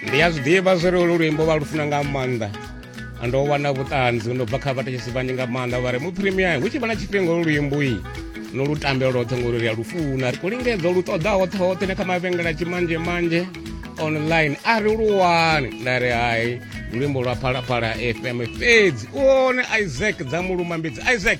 ndi a zwi ḓivha zwo ri olu luimbo vha lu funa nga maanḓa ndo wana vhuṱanzi ndo bva kha vhathetshesi vhanzhi nga maanḓa vha ri mu premier hu tshi vha na tshifhinga olu luimbo iyi no lu tambela lwoṱhe ngori ri a lu funa ri khou lingedza lu ṱoḓa hoṱhe hoṱhe na kha mavhengela tshimanzhe manzhe online a ri lu wani nda ri hai luimbo lwa phalaphala fm fhedzi u one isaac dza mulumambidzi isaac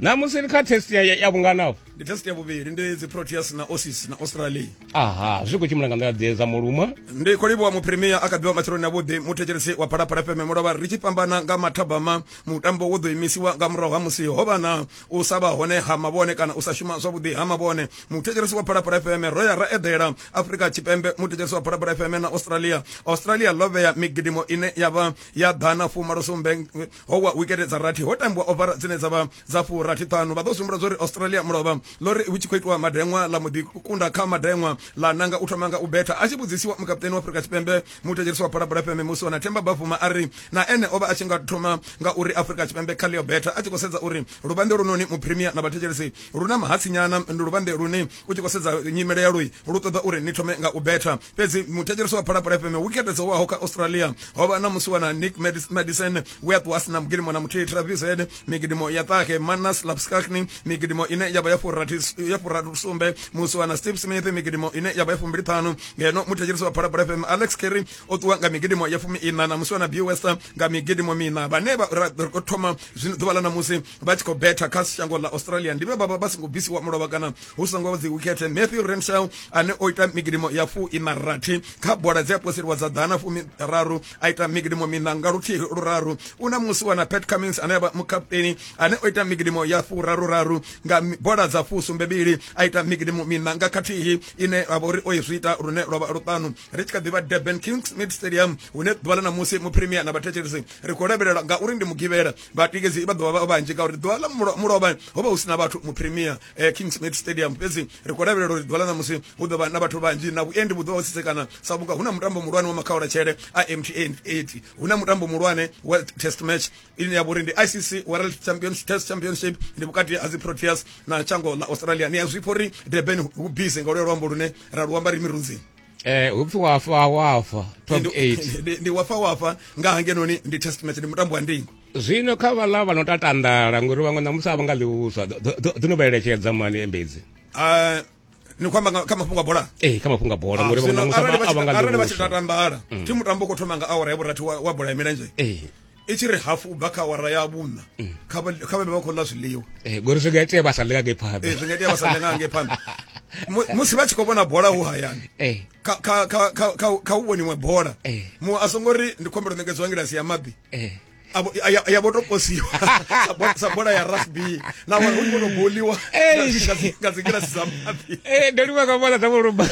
namusi ri kha test ya, ya vhunganaho ndi test ya vhuvhili ndi dzi proteas na osis na australia aha zwi khou tshimbila nga nḓila dze dza muluma ndi khou livhuwa mupremier a kabiwa matsheloni avhuḓi muthetshelesi wa phalaphala fm mulovha ri tshi fhambana nga mathabama mutambo wo ḓo imisiwa nga murahu ha musi ho vha na u sa vha hone ha mavhone kana u sa shuma zwavhuḓi ha mavhone muthetshelesi wa phalaphala fm ro ya ra eḓela afrika tshipembe muthetshelesi wa phalaphala fm na australia australia ḽo vhea migidimo ine ya vha ya ḓana fumalosumbe ho wa wikete dza rathi ho tambiwa ovara dzine dza vha dza fu rathi ṱhanu vha ḓo sumbula zwa uri australia mulovha ḽo ri hu tshi khou itiwa madeṅwa ḽa muḓi kunda kha madeṅwa ḽa nanga u thoma nga u betha a tshi vhudzisiwa mukaputeni wa afurika tshipembe muthetsheriso wa phalaphala fm musi wana themba bafuma a ri na ene o vha a tshi nga thoma nga uri afurika tshipembe kha ḽio betha a tshi khou sedza uri luvhande lunoni mupremier na vhathetshelesi lu na mahatsinyana ndi luvhande lune u tshi khou sedza nyimele ya lui lu ṱoḓa uri ni thome nga u betha fhedzi muthetshelesi wa phalaphala fm wikete dzo waho kha australia ho vha na musi wana nick madison we a ṱuwa sina mugidimo na muthihi travis head migidimo ya ṱahe manas lapskakni migidimo ine ya vha ya furathi sumbe musi wana steve smith migidimo ine ya vha ya fumbili ṱhanu ngeno muthetshelesi wa phalaphala fm alex kerry o ṱuwa nga migidimo ya fumi ina na musi wana b wester nga migidimo mina vhane vha thoma zwino ḓuvha ḽa na musi vha tshi khou betha kha shango ḽa australia ndi vhe vha vha vha songo bvisiwa mulovha kana hu songo dzi wikethe matthew rensel ane o ita migidimo ya fu ina rathi kha bola dzi a poseliwa dza ḓana fumi raru a ita migidimo mina nga luthihi luraru u na musi wana pat cummins ane avha mukapteni ane o ita migidimo ya fu raru raru nga bola dza fu sumbebili a ita migidimo mina nga khathihi ine a vhori o izwi ita lune lwa vha luṱanu ri tshi kha ḓivha durban kings mid stadium hune ḓuvha ḽa ṋamusi mupremier na vhathetshelisi ri khou lavhelela ngauri ndi mugivhela vhatikedzi vha ḓovha vha vhanzhi ngauri ḓuvha ḽa mulovha ho vha hu si na vhathu mupremier eh, king smith stadium fhedzi ri khou lavhelela uri ḓuvha ḽa ṋamusi hu ḓo vha na vhathu vhanzhi na vhuendi vhu ḓo vha tsitsekana sa vhunga hu na mutambo muhulwane wa makhaula tshele a mtn 8 hu na mutambo muhulwane wa test match ine ya vha uri ndi icc world champions test championship ndi vhukati ha dzi proteas na tshango ḽa australia ni a zwipfa uri durban hu busy nga luya luambo lune ra luamba ri mirunzini eh upfi wafa wafa top 8 ndi wafa wafa nga hangenoni ndi test match ndi mutambo wa ndingo zwino kha vhala vha no tatandala ngori vhaṅwe na musaba nga ḽiuswa ḓo no vhaeletshedza mani embedzi uh, ni khou amba kha mafhungo a bola ee eh, kha mafhungo a bola ah, ngori vhaṅwe na musaba a vha nga ḽiuswa arali vha tshi tatandala mm. thi mutambo u khou thoma nga awara ya vhurathi wa bola ya milenzhe ee eh. i tshi ri hafu ubva kha awara ya vhuṋa mm. kha vhe vha vha khou ḽa zwiḽiwa eh, ngori zwi nga itea vha sa ḽe nga ngei phanḓa eh, zwi nga itea vha sa ḽe nga ngei phanḓa musi vha tshi khou vhona bola hu hayani eh. kha u vhoniwe bola mu a songo ri ndi khombelo ṋekedzo wa ngilasi ya maḓi ya vho to posiwa sa bola ya rugby na wa hu kono boliwa nga dzingilasi dza maḓi ndo livha nga bola dza vho lumba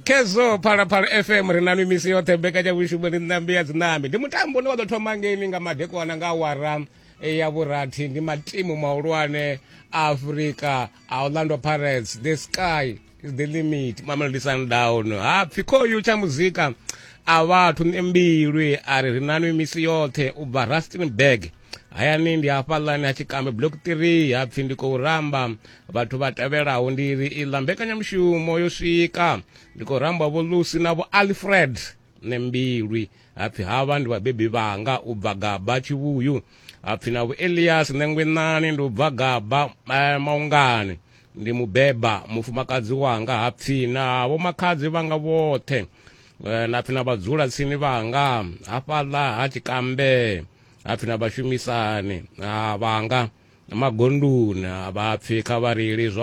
khezwo phalaphala fm ri na mimisi yoṱhe mbekanyavhushumo ni ṋambi ya dzinambi ndi mutambo une wa ḓo thoma ngeini nga madekwana nga awara eh, ya vhurathi ndi matimu mahulwane a afurika a orlando pirates the sky is the limit mamelodi sundown ha pfi khoyu tsha muzika a vhathu ni mbilwi a ri ri na mimisi yoṱhe u bva rustenburg hayani ndi hafhaḽani ha tshikambe block 3 ha pfi ndi khou ramba vhathu vha tevhelaho ndi ri iḽa mbekanyamushumo yo swika ndi khou ramba vho lucy na vho alfred ne mbilwi hapfi havha ndi vhabebi vhanga u bva gaba tshivhuyu hapfi na vho elias nengwenani ndi u bva gaba eh, maungani ndi mubeba mufumakadzi wanga hapfi na vho makhadzi vhanga vhoṱhe eh, na pfi na vhadzula tsini vhanga hafhaḽa ha tshikambe hapfi na vhashumisani vhanga magondoni vhapfi kha vha reili zwa